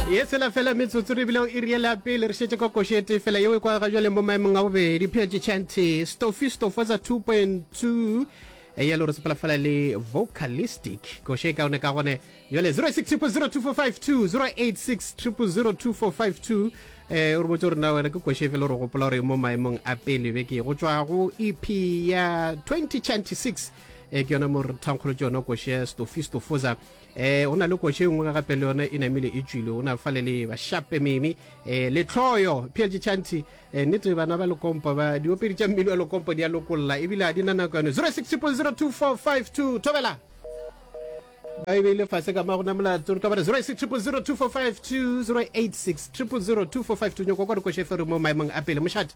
ye tshela fela metsotso re bile o e riele ya pele re šetse ka košete fela yeo e kwa ga jwale mo maemong a bobedi pheletše chanty stofi stofatsa 2.2 e ya le gore sepela fela le vocalistic koše e kaone ka gone jale 06002452 086002452 eh o re botse gore na wena ke koše fela gore gopola gore mo maemong a pele be ke go tswa go ep ya 2026 e ke yona mo re thankgolotse yona koše stofi stofoza E, go na le kotši e nngwe ga gape le yona e namile e tšwile go na fale le bashape meme e, letlhoyo phj chanti e, nnete bana ba lekompo ba diopedi tša mmino wa lekompo di a lokolla ebile ga di na nako yone 06002452 thobela ba e beile fase ka magona molato re ka bare 06002452 086 0002452 nyoko kwa dikošefere mo maemong a pele mošate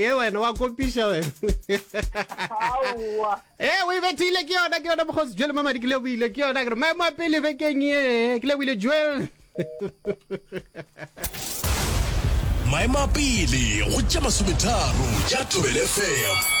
ye wena wa kopiša wena e eh, o e bethile ke yona ke yona bokgosi jele mamadi ke leboile ke yona kere maemo a pele bekeng ye ke leboile jele maemo a pele go tša masometharo tša tobele fm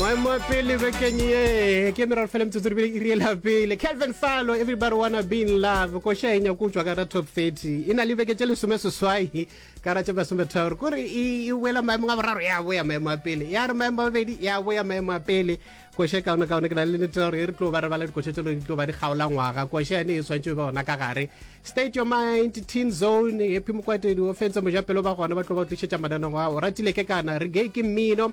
maemo a pele bekeng ye ke meraro fela metsotso rebele e riela pele calvin falo everybody wanna be in love koša e nyako utswa ka top 30 e na le beke tše lesome seswai ka ra tše masometharo ko re e boela maemong a boraro ya boya maemo a pele ya re maemo a bobedi ya boya maemo a pele koša kaone kaone ke na le nete gore e re tlo ba re bala dikoša tse di tlo ba di kgaola ngwaga koša yane e tshwanetse ba gona ka gare state your mind teen zone epi mokwatedi o fentse mojapelo ba gona ba tlo ba tlišetša mananeng ao ratile ke kana re gay ke mmino